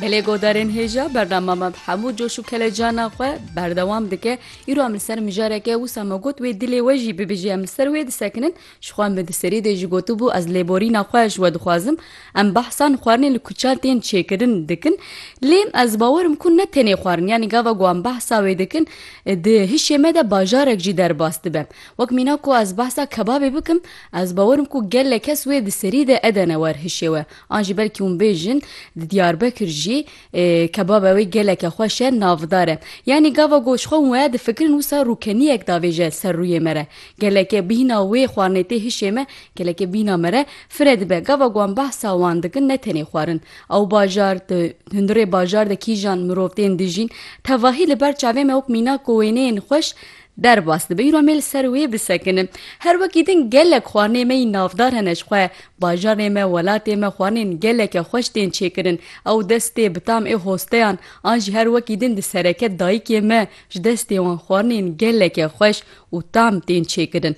Gelê Godarên Hêja bernama me bi hemû coş û kelecana xwe berdewam dike. Îro em li ser mijareke wisa me got wê dilê we jî bibêjî em li ser wê disekinin. Jixwe em bi di serî dê jî gotibû ez lêborîna xwe ji we dixwazim. Em behsa li xwarinê li kuçan tên çêkirin dikin. Lê ez bawer im ku ne tenê xwarin yanî gava ku em behsa wê dikin di hişê me de bajarek jî derbas dibe. Wek mîna ku ez behsa kebabê bikim Ez bawer im ku gelek kes wê di serî de edene wer hişê we. An jî belkî hûn bêjin di Diyarbekir jî kebaba wê geleke xweş e, navdar e. Yanî gava ku ji xwe hûn waya difikirin wisa rûkeniyek davêje ser rûyê me re. Gelekê bîhna wê xwarinê tê hişê me, gelekê bîhna me re fire dibe. Gava ku em behsa wan dikin ne tenê xwarin. Ew bajar, di hundirê bajar de kîjan mirov tên dijîn. Tevahî li ber çavê me wek mînak û wêneyên xweş Derbas dibe îro me li ser wê bisekin. Her wekî din gelek xwarinê me yî navdar hene ji xwe. Bajarê me, welatê me xwarinên geleke xweş tên çêkirin. Ew destê bi tam ê hosteyan an jî her wekî din di sereke dayikê me ji destê wan xwarinên geleke xweş û tam tên çêkirin.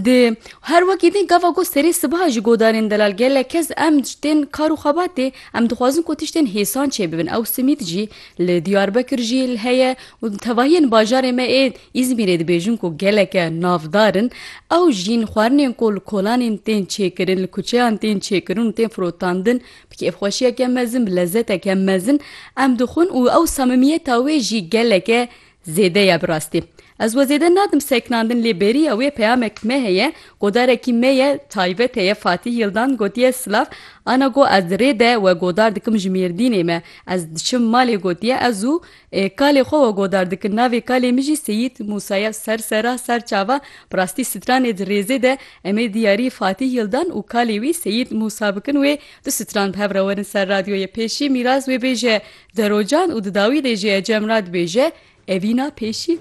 Di her wekî din gava ku serê sibiha ji godarên delal gelek kes em ji tên kar û xebatê em dixwazin ku tiştên hêsan çêbibin. Ew simît jî Li Diyarbekir jî heye û tevahiyên bajarê me ê Îzmîrê dibêjin ku geleke navdar in. Ew jîn xwarinên ku li kolanên tên çêkirin, li kuçeyan tên çêkirin û tên firotandin bi kêfxweşiyeke mezin, bi lezeteke mezin em dixwin û ew samimiyeta wê jî geleke Zêde ye bi rastî. Ez we zêde nadim seknandin lê bêriya wê peyamek me heye ku darekî me ye taybet heye Fatîh Yildan gotiye silav ana got ez di rê de we godar dikim ji Mêrdînê me ez diçim malê gotiye ez û kalê xwe we godar dikin navê kalê min jî Seyîd Mûsa ye ser sera ser çava bi rastî stranê di rêzê de em ê diyarî Fatîh Yildan û kalê wî Seyîd Mûsa bikin wê du stran bi hev re werin ser radyoyê pêşî Mîraz wê bêje Derocan û di dawî de jî Ecem re dibêje, Evîna pêşî.